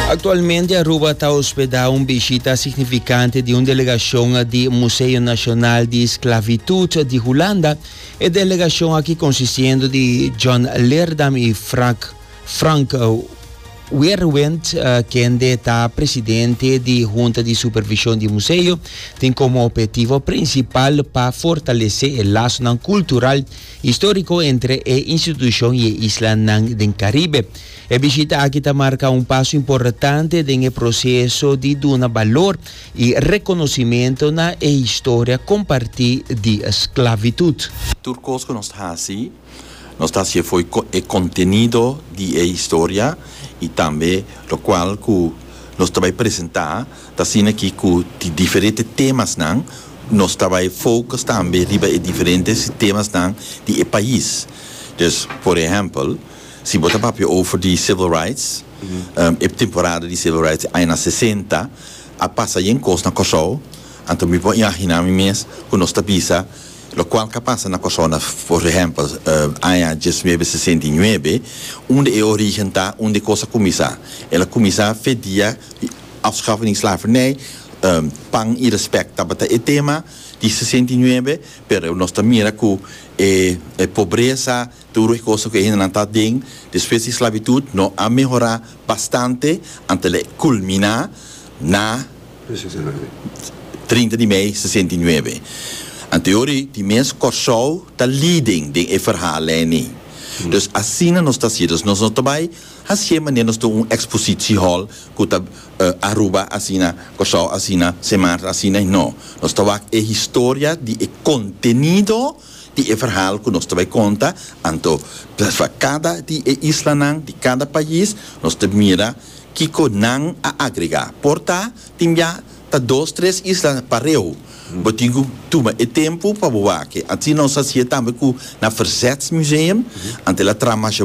Actualmente Aruba ta hospeda un bishita significante di un delegacion di Museo Nacional di Sclavitud di Hulanda. E delegacion aki consistiendo di John Leerdam y Frank, Frank Weerwind, kende ta presidente di Hunta di Supervision di Museo, tin como obhetivo principal pa fortalece e lasonan cultural Histórico entre e institucion y e islanan den Caribe. E bishita aki ta marca un paso importante den e proceso di duna balor y reconocimento na e historia comparti di sclavitud. Tur cos cu nos ta haci, nos ta haci efo y e contenido di e historia y tambe locual cu nos ta bay presenta, Ta asina aki cu di diferente temasnan nos ta bay focus tambe riba e diferente temasnan di e pais. Dus, por ehempel, si bo ta papia over di civil rights, e temporada di civil rights di añanan sesenta a pasa yen cos na Corsou, anto mi por imagina mi mes cu nos ta bisa locual ca pasa na Corsou na, por ehempel, aña diesnuebe sesenta i nuebe, unda e origen ta, unda e cos a cuminsa. El a cuminsa fe dia. Afschaffen die slavernij, pan y respect tabata e tema di sesenta y nuebe, pero nos ta mira cu e pobreza, tur e cosa cu e hendenan ta aden despues di esclavitud no a mehora bastante antel e culmina na trinta di mei sesenta y nuebe. Anto yori di mes Corsou ta leading den e verhalen ni. Dus asina nos ta haci, dus nos no ta bay. Hacié manera nos tin un expositie hall cu ta Aruba asina, Curaçao asina, Sint Maarten asina y no. Nos ta wak e historia di e contenido di e verhaal cu nos ta bay conta anto pa cada di e islanan di cada pais nos ta mira kico nan a agrega. Por ta tin bia ta dos tres isla pareu. Bo tin cu tuma e tempo pa bo wak e. Asina nos hacié tambe cu na Verzetsmuseum anto el a traha masha.